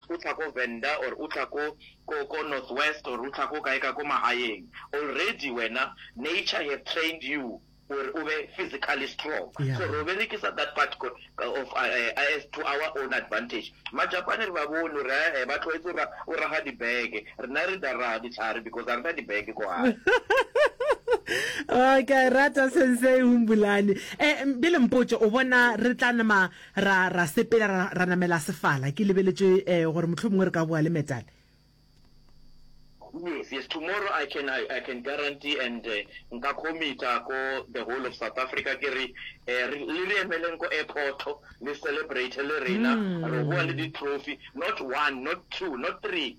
o tla ko Venda or o tla ko ko ko North West or o tla ko kae ka ko magaeng already wena nature have trained you gore o be physically strong so ro berekisa that part of us to our own advantage Majapane re ba bone gore hee ba tlwaetse gore o raga di beke rena re da raga ditlhare because ga rena di beke ko gae. Ke a e rata Sensei Humbulani. Eh, bjale mpotše, o bona re tla nama Ra, ra sepela, ra, ra namela sefala. Ke lebeletše eh, gore mohlomongwe re ka boa le Metal. Yes, yes, tomorrow I can, I, I can guarantee and uh, nka committa ko the whole of South Africa ke re, eh, re, le re emeleng ko airport, le celebrate le rena, re boa le di-trophy, not one, not two, not three,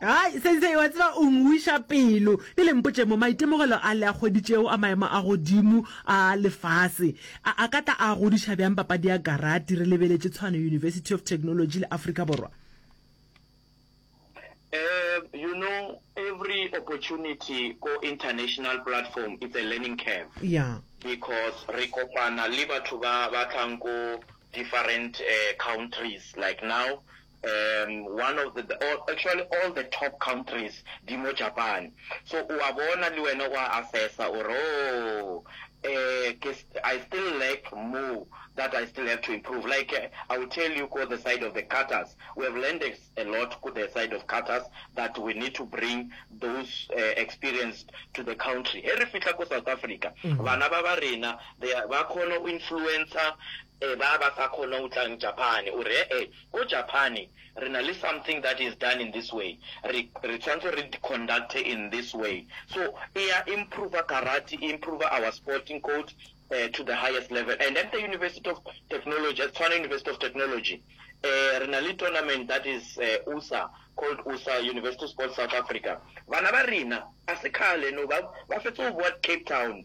Hai, Sensei, wa tseba o ngwiša pelo. Ke le mpotše mo, maitemogelo a le a kgwedi tšeo a maemo a godimo a lefase a, a ka tla a godiša bjang papadi ya karati re lebeletše Tshwane University of Technology le Afrika Borwa? Um, you know, every opportunity ko international platform it's a learning curve. Ya. Because re kopana le batho ba ba tlang ko different, um, countries like now, um one of the or actually all the top countries di mo Japan so o a bona le wena o a assessa o re ooh um ke I still lack more that I still have to improve like I will tell you ko the side of the cutters we have learned a a lot ko the side of cutters that we need to bring those um experienced to the country he re fihla ko South Africa bana ba ba rena they are ba kgona go influencer E ba ba sa kgone go tlang Japane. O re, E-e, ko Japane re na le something that is done in this way. Re, re tshwanetse re conduct-e in this way. So, e ya improver karate, e improver our sporting code um to the highest level. And at the University of Technology, at Tshwane University of Technology, um re na le tournament that is um usa, called usa, University Sports South Africa. Bana ba rena, ga se kgale no, ba, ba fetsa go bowa Cape Town.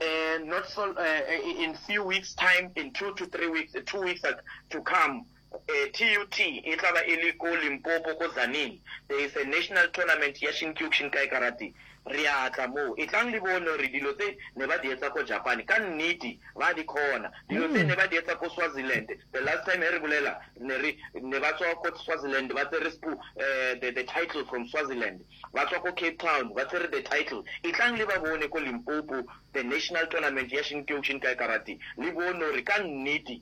uh, not so uh, in few weeks time in two to three weeks two weeks to come uh, tut e tla ba e le ko limpopo ko zanin there is a national tournament ya shinkyokshin kai karate re a tla moo e tlang le bone gore dilo tse ne ba di etsa ko japan ka nnete ba di kgona dilo tse mm. ne ba di etsa ko swaziland the last time e re bolela ne ba tswa ko swaziland ba tsere spo um eh, the title from swaziland Ba tšwa ko Cape Town ba tswere the title Etlang le ba bone ko Limpopo the national tournament ya Shinkyou Shinkai Karate le bone gore ka nnete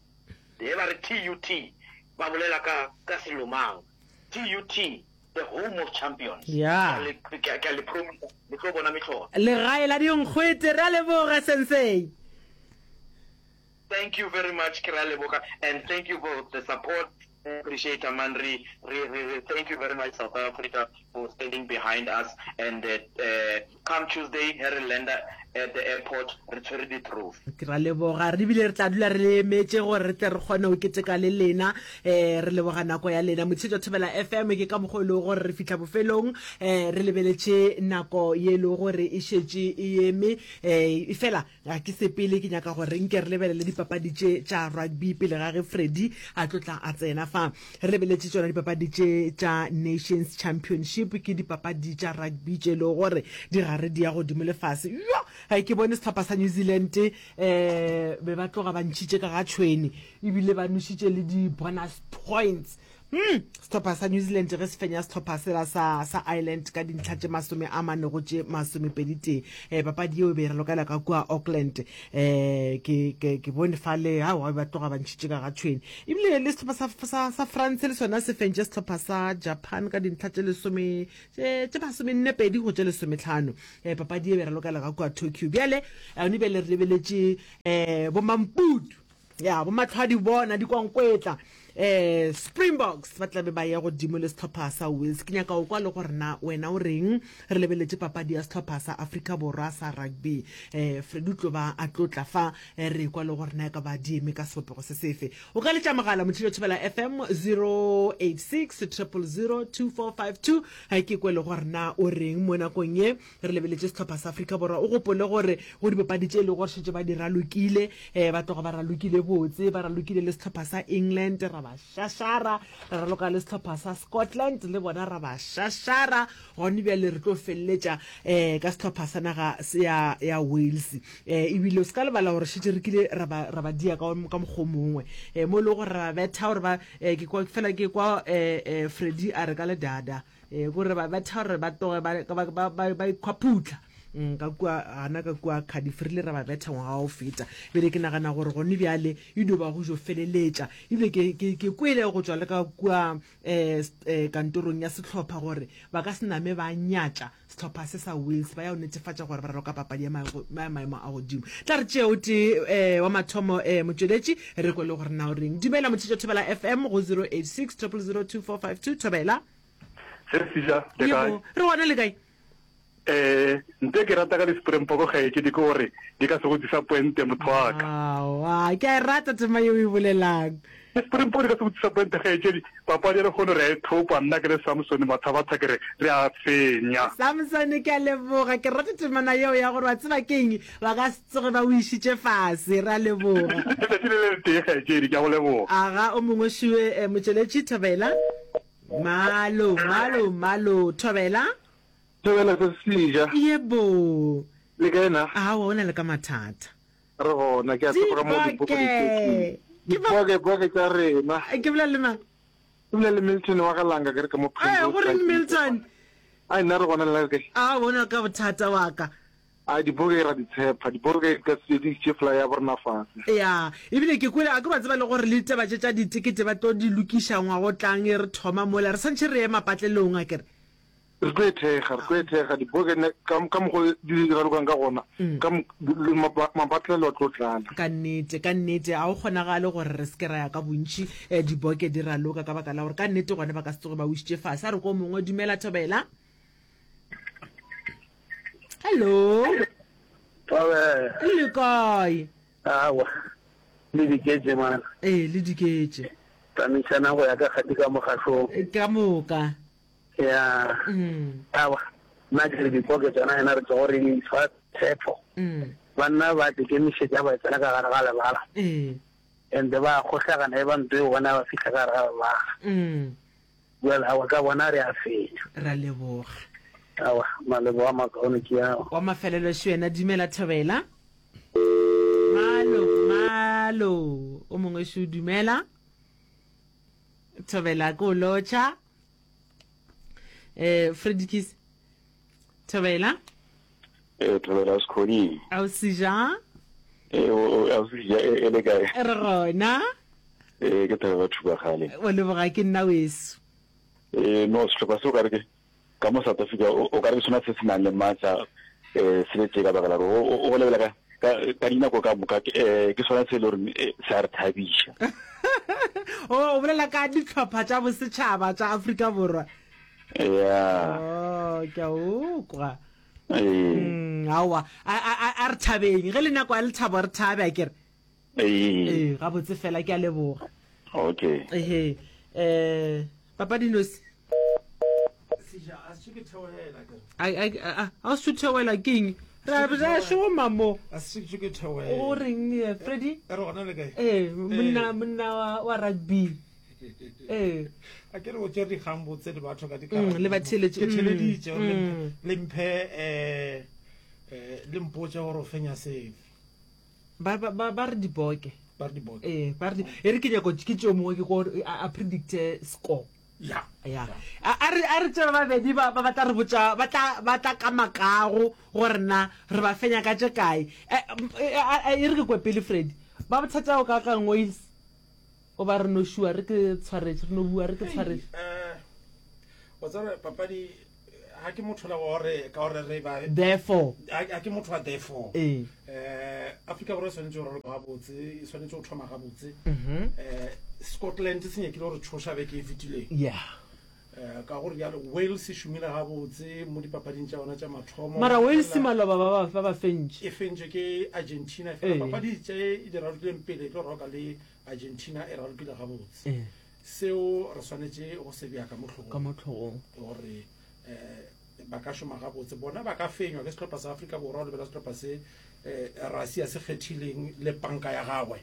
ge ba re TUT ba bolela ka ka selo mang. TUT the home of champions. Ke a Yeah. le ke a- ke a le promisa le tlo bona mehlolo. Legae la dinkgwete, re a leboga Sensei. Thank you very much ke re a leboga and thank you for the support. Re appreciate man re re re re thank you very much South Africa for standing behind us and come Tuesday he re lander at the airport re tshwere di trophy. Ke ra leboga re bile re tla dula re le emetše gore re tle re kgone go keteka le lena eh re leboga nako ya lena Motshetswa Thobela FM ke ka mokgwa e lego gore re fihla bofelong eh re lebeletše nako ye e lego gore e šetše e eme eh efela Ga ke sepele, ke nyaka gore nke re lebelele dipapadi tše tša rugby pele ga ge Freddy a tlo tla a tsena fa. Re lebeletše tšona dipapadi tše tša Nations Championship, ke dipapadi tša rugby tše e lego gore di gare di ya godimo le fase. Yo! Ga ke bone sehlopha sa New Zealand um be ba tloga ba ntšhitše ka ga tšhwene ebile ba nwešitše le di-bonus points. Hmm, sehlopha sa New Zealand ge se fenya sehlopha sela sa, sa Ireland ka dintlha tše masome a mane go tše masomepeditee eh, papadi yeo e be e ralokela ka kua Auckland eh, ke, ke, ke bone fa le ao ba be ba tloga ba ntšhitše ka ga tšhweni ebile le sehlopha sa, sa, sa France le sona se fentše sehlopha sa Japan ka dintlha tše lesome tše masomennepedi go tše lesometlhano eh, papadi e be e ralokela ka kua Tokyo bjale yone bjale re lebeletše eh, bomamputu Ya, bomatlhwadi bona dikwankwetla. Eh, Springboks ba tlabe ba ya godimo le setlhopha sa Wales. Ke nyaka o kwa le gore na wena o reng re lebeletše papadi ya setlhopha sa Afrika Borwa sa rugby. Eh, Freddy o tlo ba a tlotla fa eh, re kwa le gore na e ka ba di eme ka sebopego se sefe. O ka letša mogala motšhilo thibela FM 086 000 2452 eh, ke kwe le gore na o reng mo nakong ye Re lebeletše sehlopha sa Afrika Borwa. O gopole gore go dipapadi tše e lego gore šetše ba di ralokile, um ba tloga ba ralokile botse, ba ralokile le sehlopha sa England ra ba šašara, ra raloka le sehlopha sa Scotland le bona ra ba šašara, gone bjale re tlo feleletša um ka sehlopha sa naga ya, ya Wales. Um ebile o se ka lebala gore šetše re kile ra ba, ra ba dia ka, ka mokgwa o mongwe um mo e lego gore ra ba betha gore ba um ke kwa, fela ke kwa um um Freddie a re ka ledada. e gore ba ba tshwara ba toge ba ba ba ba ikhwaphutla mm, ka kwa ana ka kwa cardiff re ile ra ba betha ngwaga o feta bele ke nagana gore gone bjale e dio ba go jo feleletša ebile ke ke ke kwele go tswa le ka kwa um kantorong ya setlhopha gore ba ka se name ba nyatša sehlopha se sa wales ba ya go netefatša gore ba roka papadi ya maemo a godimo tla re tšeo te um eh, wa mathomo um eh, motšweletši re kwele gore na o reng dumela motšhetšo thobela fm go 086 002452 thobela re gona le kae eh nte ke rata ka di-springboko gaeke di ke gore di ka se go disa poente motho waka ke a e rata tema e o e bolelang Ke Springbok di ka se go disappointe kgaetšedi, papadi ya lekgono re a e thopa nna ke le Samson Mathabatha ke re re a fenya. Samson ke a leboga ke rata temana yeo ya gore wa tseba ke eng ba ka se tsoge ba o išitše fase re a leboga. Letšatši le le le tee kgaetšedi ke a go leboga. Aga o mongwe šue eh motšweletši Thobela Malo Malo Malo Thobela. Thobela se se ja. Yebo. Le kae na? Aowa o na le ka mathata. re gona ke a tseba ka mo limpopo di tletseng dipoke poke tsa rena ke bolela le mang ke bolela le milton wa galanga ke re ka mo phengo go reng milton a nna re gona le re kae a bona ka bothata wa ka a dipoke ra ditshepa dipoke ka se di tše fly ya borna fase ya ebile ke kwele a ke ba tseba le gore le taba tše tša ditekete ba tlo di lokiša ngwa go tlang e re thoma mola re santše re ema patlelong a kere Re tlo e thekga, re tlo e thekga, dibokene, ka, ka mokgwa di ralokang ka gona, mm. ka le mapa, mapatlelo a tlo tlala. Ka nnete, ka nnete, a o kgonagale gore re seke ra ya ka bontši eh, diboke di raloka ka baka la gore ka nnete gone ba ka se tsoge ba wišitše fase. A re ko mongwe, dumela Thobela. Hello. Thobela. O le kae? Awa. Le diketse mana. Eh, le diketse. Tsamaisana go ya ka kgati ka mogašong. Ka moka. ya awa nna ke re dipoke tsona yena re tlogo re fa tshepo banna ba tekemišetša ba tsena ka gare ga lebala and ba kgohlagana e ba nto eo bona ba fitlha ka gare ga lebala well awa ka bona re a fenya ra leboga awa malebo wa makaone ke ao wa mafelelo šo yena dumela thobela malo malo o mongwe šo dumela thobela ko lotšha eh fredikis thobela eh thobela o sekgoding a o sija eh a o sija e, e le kae re gona eh ke thobela batho ba gale o leboga ke nna weso eh no setlhopha se o ka re ke ka mo south africa o ka re ke sona se se nang le maatla um se le tse ka baka la gore o go lebela ka ka ka dinako ka moka ke eh, ke sona se e le goreng eh, se a re thabiša o Oh, o bolela ka ditlhopha tša bosetšhaba tša aforika borwa ya o ke a ukwa eh. Mm, aowa a a- a- a re thabeng ge le nako ya lethabo re thabe a kere ee gabotse fela ke a leboga okay ehe um papadi nosi a o suthewela keng ra ra shoma mo o reng eh, freddy ee monna monna wa- wa rugby ee a ke re o tsere dikgang botse le batho ka dikara Mm, le ba theeletše. ke theeleditše Mm, gore mm. le mphe um le mpotse gore o fenya safe ba ba ba ba re diboke ba re diboke eh ba re di- e re ke nyako ke tšeo mongwe ke ko a a predicte score ya ya a a re a re tšeba babedi ba ba ba tla re botša ba tla ba tla ka makago gore na re ba fenya ka tše kae Eh, m- eh, a- a- e re ke kwe pele freddy ba bothata o ka kang wales o ba re no šua re ke tshwaretse re no bua re ke tshwaretse Eh, wa tseba papadi ga ke motho la gore ka gore re ba therefore ga ke motho wa therefore eh Africa borwa swanetse gore ba botse swanetse go thoma ga botse mhm. eh Scotland se nyekile gore tshosha be ke e fitileng yeah eh, ka gore jalo wales e šomile ga botse mo dipapading tša yona tša mathomo mara wales maloba ba ba ba fentše e fentše ke argentina fela papadi tše e di ralokileng pele tlo roka le argentina e ralokile ga botse Seo re swanetše go se bea ka mo hlogong. Ka mo hlogong. Gore eh, ba ka šoma gabotse. Bona ba ka fenywa ke sehlopha sa Afrika Borwa, o lebela sehlopha se eh, Russia se kgethileng le panka ya gagwe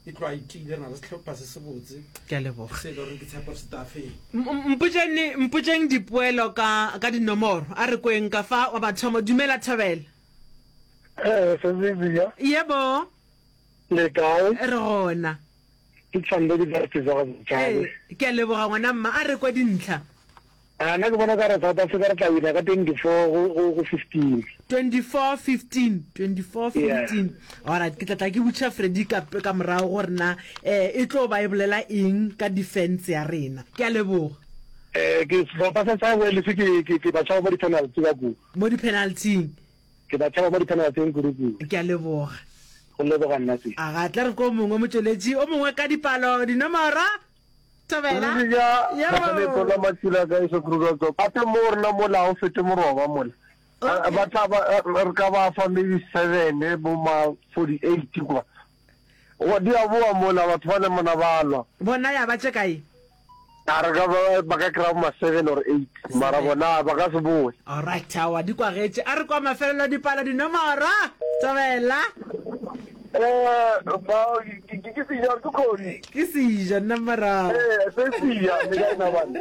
e tlo a itile re na le sehlopha se se botse ke a leboga se le gore ke tshepo se tla feng mpotšeng mpotšeng dipoelo ka ka dinomoro a re kweng ka fa wa bathomo dumela thabela eh sezizia yebo le kae re gona Ke tšhwanile ke dire tse jago bjale. Ee, ke a leboga ngwana mma. A re kwa dintlha. A nna ke bona ka re South Africa re tla wina ka 24 go, go, go 15. 24, 15, 24, 15. Yeah. Alright, ke tla tla ke butša Freddy ka, ka morago gore na eh, e tlo ba e bolela eng ka defense ya rena. Ke a leboga. Eh, ke sehlopha sa sa Wales ke, ke, ke ba tšhaba mo di-penalty ka kua. Mo di-penalty-ing. Ke ba tšhaba mo diphenelaseng kuruku. Ke a leboga. Go leboga nna se. A ga tla re ko mongwe motšweletši o mongwe ka dipalo, dinomoro. Thobela. Ruri ja, Mathale Tola Matsila ka eso Kruger Tsoko. A te mo rena mola ha o fete moroba mola. Okay. Ba tla ba, re ka ba fa maybe seven bo ma forty eight kwa. Goba di a boa mola, batho ba namana ba lwa. Bona ya ba tše kae? A re ka ba, ba ka kry-a bo ma seven or eight, mara bona ba ka se boe. Alright, aowa, di kwagetše. A re kwa mafelelo a dipalo, dinomoro! Tswela! Ba, ke, ke, ke seja or ke kgosi? Ke seja, nna morago. Ee, se seja, le kae na bana?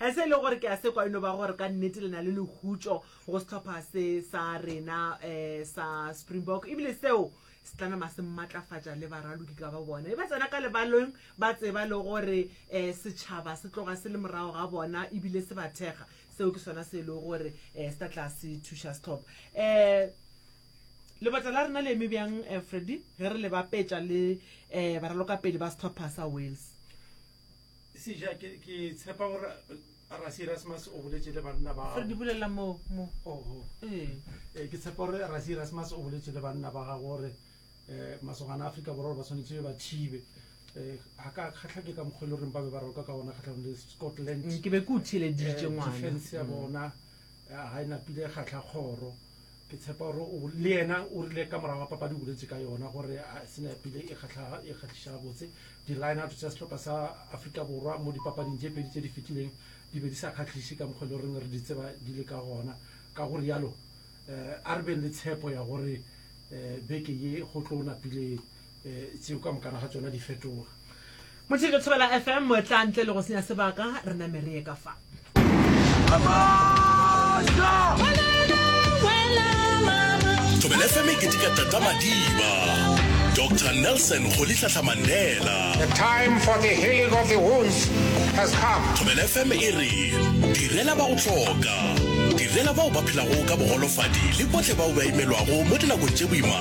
Ge se e le gore ke a sekwa e no ba gore ka nnete le na le lehutšo go sehlopha se sa rena um sa Springbok ebile seo se tla nama se mmatlafatša le baraloki ka ba bona e ba tsena ka lebaleng ba tseba le gore um setšhaba se tloga se le morago ga bona ebile se ba thekga. Seo ke sona se e le gore um se tla tla se thuša sehlopha. Um Lebota la rena le eme bjang, Freddy, ge re le bapetša le um baralokapele ba sehlopha sa Wales? Seja, ke, ke tshepa gore Rasi Erasmus o boletše le banna ba Re di bolela mo mo. Oho. Ee. Eh, ke tshepa gore Rasi Erasmus o boletše le banna ba gago gore eh, masogana a Afrika Borwa ba swanetše ba thibe eh, ga ka kgatlha ke ka mokgwa e le goreng ba be ba raloka ka gona kgatlhanong le Scotland. Mm, ke be ke o theeleditše, Eh, ngwana. defense ya Mm. bona ya ga e napile kgatlha kgoro ke tshepa gore le yena o rile ka morago ga papadi o boletse ka yona gore senapile e kgatlhiša botse di-lineout tsa setlhopha sa aforika borwa mo dipapading tse pedi tse di fetileng di be di sa kgatlhise ka mokgwa le goreng re di tseba di le ka gona ka go rialo um a re beng le tshepo ya gore um beke ye go tlo napile tseo ka mokana ga tsona di fetoga motheke thobela fm moetla ntle le go senya sebaka re name re ye ka fa thobela fm e ketika tata madiba dr nelson go litlhahla mandela the time for the healing of the wounds has come thobela fm e re direla ba go tlhoka direla bao ba phelago ka bogolofadi le botlhe bao ba imelwago mo dinakong tše boima